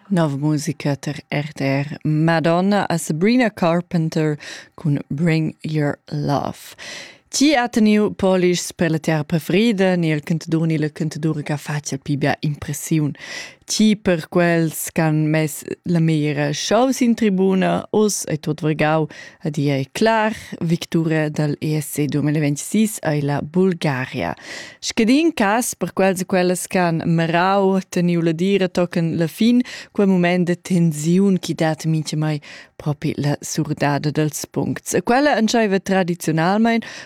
Nov musica tar RTR Madonna a Sabrina Carpenter cun Bring Your Love. Ti ha teniu polish per la terra preferida, ni il cantadur ni la cantatura che faccia più bia impressiun. Ti per quels che han mess la mera shows in tribuna, os e tot vargau Ed i ei clar, victura dal ESC 2026 ei la Bulgaria. Scadin cas per quels e quellas che han merau teniu la dira tochen la fin, quel moment de tensiun chi dat mintga mai propi la surdada dels puncts. E quella entscheiva tradizionalmein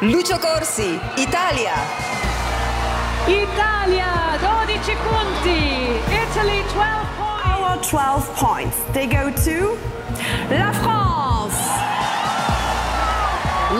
Lucio Corsi, Italia! Italia, 12 punti! Italy, 12 points! Our 12 points, they go to la France!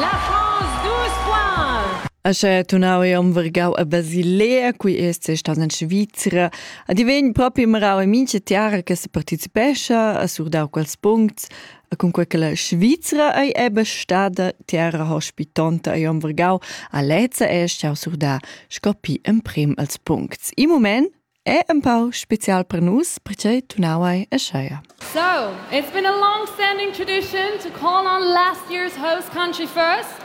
La France, 12 points! Asche tunau e umvergau a Basilea, cui est stas in Svizra, a divegn propi marau e mince tiara che se participescha, a surdau quels puncts, E cun quella la Svizra ei ebe stada terra hospitonta e omvergau a lezza e schau surdar scopi emprim als puncts. I moment è un pau special per nus perché tu nawai e scheia. So, it's been a long-standing tradition to call on last year's host country first.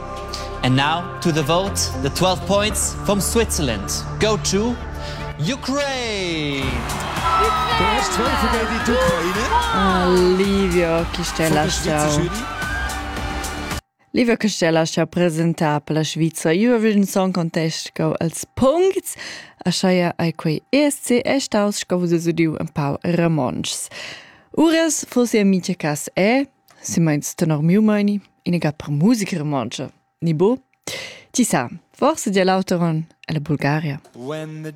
And now to the vote, the 12 points from Switzerland. Go to Ukraine! Zuerst Weltliga in die Ukraine. Livio Chistellastau. Livio Chistellastau presentà per la Sviza Eurovision Song Contest go als puncts. Aschaia ai quei ESC è staus sco vus udiu un pau Ramonschs. Uras fossi amice cas è, se meins tenor miu meini, inegat per musica romontscha, ni bu? Ti sa, forse dir l'auter onn è la Bulgaria. When the